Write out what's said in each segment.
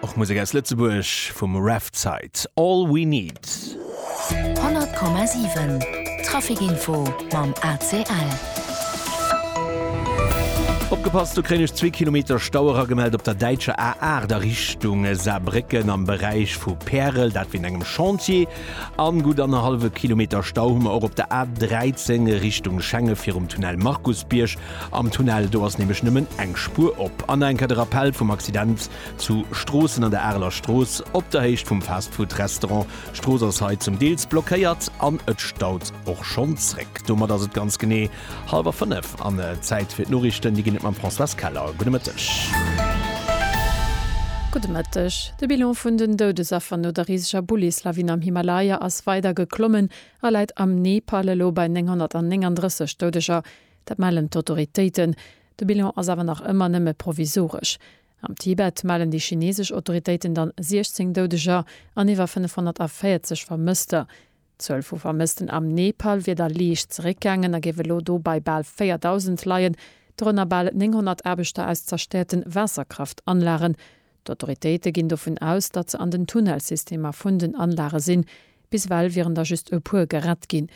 Och Musek aus Lëtzebuerg vum Revside, All We Need. 100,7 Traficinfo mam ACL. Opgepasst, do kréien ech zwee Kilometer Stau eragemellt op der däitscher A8 a Richtung Saarbrécken am Beräich vu Pärel, dat wéint engem Chantier. An gutt annerhallwe Kilometer Stau hu mer och op der A13 Richtung Schengen virum Tunnel Markusbierg. Am Tunnel do ass nämlech nëmmen eng Spuer op. An enker de Rappell vum Accident zu Stroossen an der Areler Strooss op der Héicht vum Fastfood Restaurant. D'Strooss ass hei zum Deels blockéiert an et staut och schonn zréck. Domat ass et ganz genee hallwer 5 an Zäit fir d'Noriichten. Déi ginn et mam Françoise Keller. Gudde Mëtteg. Gudde Mëtteg. De Bilan vun den Doudesaffer no der riseger Bullislawin am Himalaya ass weider geklommen a läit am Nepal elo bei 939 Doudeger. Dat mellen d'Autoritéiten. De Bilan ass awer nach ëmmer nëmme provisoresch. Am Tibet mellen déi chinesesch Autoritéiten dann 16 Doudeger an iwwer 540 Vermësster. D'Zuel vu Vermëssten am Nepal wier da liicht zeréckgaangen a géif elo do bei bal 4.000 leien, dorënner bal 900 Aarbechter aus zerstäerte Waasserkraftanlagen. D'Autoritéite ginn dovun aus, datt se an den Tunnelsystemer vun den Anlage sinn. Bis ewell wieren der just e puer gerett ginn.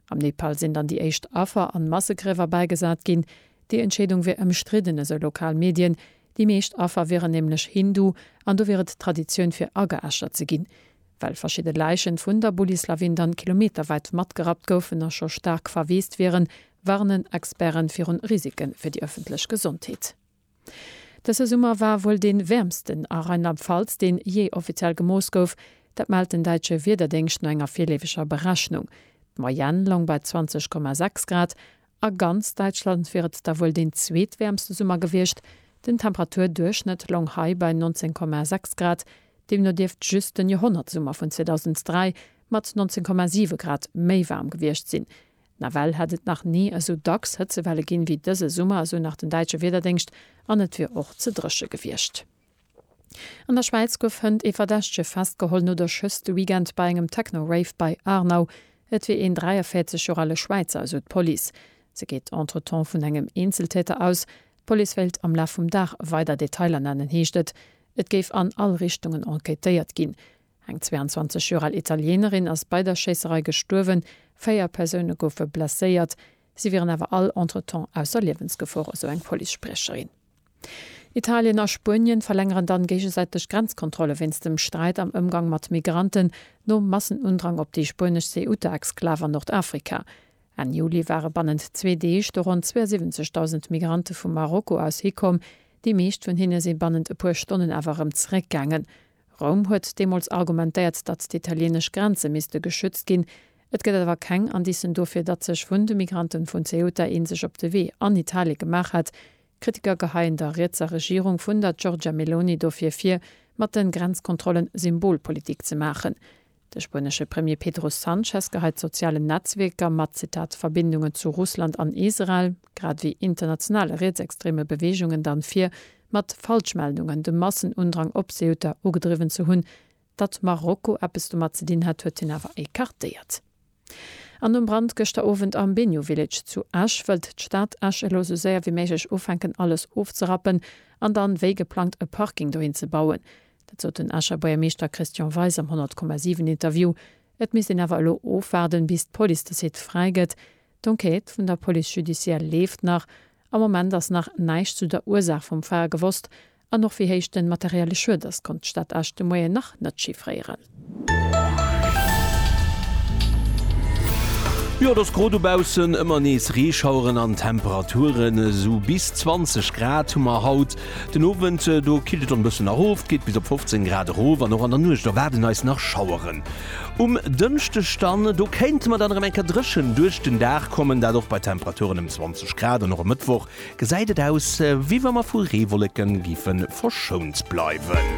Am Nepal sinn dann déi éischt Affer an Massegriewer bäigesat ginn. Déi Entscheedung wier ëmstridden, esou lokal Medien. Déi meescht Affer wieren nämlech Hindu an do wier et Traditioun fir ageäschert ze ginn. Well verschidde Läichen vun der Bullislawin dann kilometerwäit matgerappt goufen a scho staark verweest wieren, warnen Experten virun Risike fir déi ëffentlech Gesondheet. Dëse Summer war wuel dee wäermsten a Rheinland-Pfalz, deen jee offiziell gemooss gouf. Dat mellt den däitsche Wiederdéngscht no enger virleeweger Berechnung. D'Moyenne loung bei 20,6 Grad. A ganz Däitschland wier et da wuel deen zweetwäermste Summer gewiescht. Den Temperaturduerchschnëtt loung hei bei 19,6 Grad. Deemno dierft just den Joerhonnertsummer vun 2003 mat 19,7 Grad méi waarm gewiescht sinn. Nawell hätt et nach ni esou dacks Hëtzewelle ginn, wéi dëse Summer, esou nach den däitsche Wiederdéngscht, an et wier och ze dréche gewiescht. An der Schwäiz gouf hënt ee Verdächtege festgeholl no der Schëss de Weekend bei engem Techno-Rave bei Aarnau. Et wier een 43 Joer ale Schwäizer, esou d'Police. Se geet entretemps vun engem Eenzeltäter aus. D'Police wéilt am Laf vum Dag weider Detailer nennen, heescht et. Et géif an all Richtungen enquêtéiert ginn. Eng 22 Joer al Italienerin ass bei der Schéisserei gestuerwen, véier Persoune goufe blesséiert. Si wieren awer all entretemps ausser Liewensgefor, esou eng Police-Spriecherin. Italien a Spuenien verlängeren dann géigesäiteg Grenzkontrolle wéinst dem Sträit am Ëmgang mat Migranten, nom Massenundrang op déi spuenesch Ceuta-Exklav an Nordafrika. Enn Juli ware bannent zwee Deeg do ronn 72.000 Migrante vu Marokko aus hikomm. Déi meescht vun hinne si bannent e puer Stonnen awer erëm zeréckgaangen, Roum huet deemools argumentéiert, datt d'italienesch Grenze misste geschützt ginn. Et gëtt awer keng Indicen dofir, datt sech vun de Migranten vun Ceuta een sech op de Wee an Italie gemaach hätt. Kritiker geheien der rietser Regierung vun der Giorgia Meloni dofir vir, mat de Grenzkontrollen Symbolpolitik ze maachen. De spuenesche Premier Pedro Sanchez geheit sozialen Netzwierker mat, Zitat, Verbindungen zu Russland an Israel, grad ewéi internationale rietsextreme Beweegungen dann vir, mat Falschmeldungen de Massenundrang op Ceuta ugedriwwen ze hunn. Datt Marokko eppes domat ze dinn hätt, huet hien awer écartéiert. An nom Brand gëschter Owend am Bennu Village zu Esch, wëllt d'Stad Esch elo sou séier wéi méiglech ufänken alles ofzerappen an dann wéi geplangt e Parking dohin ze bauen. Dat sot den Escher Buergermeeschter Christian Weis am 100,7 Interview. Et misst een awer elo ofwaarden, bis d'Police de Site fräi gëtt. D'Enquête vun der Police judicielle leeft nach. Am Moment ass nach näischt zu der Ursaach vum Feier gewosst, An och wéi héich den materielle Schued ass, konnt d'Stad Esch de Moien nach net chiffréieren. Jo, et ass gro dobaussen, ëmmer nees Reeschaueren an Temperaturen esou bis 20 Grad hu mer haut. Den Owend, do killt et dann e bëssen nach of, geet bis op 15 Grad erof an och an der Nuecht erwaarden eis nach Schaueren. Um Dënschdeg dann, do kéinte mer dann erëm eng Kéier dréchen duerch den Dag kommen, dat och bei Temperaturen ëm 20 Grad an och e Mëttwoch Gesäit et aus wéi wa mer vu Reewolleken giffen verschount bleiwen.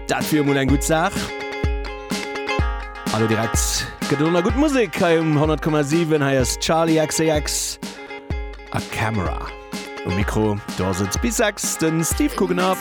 Dat wier emol eng gutt Saach. An elo direkt gëtt et och nach gutt Musek hei um 100,7. Hei ass Charli XCX a Camera. Um Mikro do ass et bis 6 de Steve Coogan a.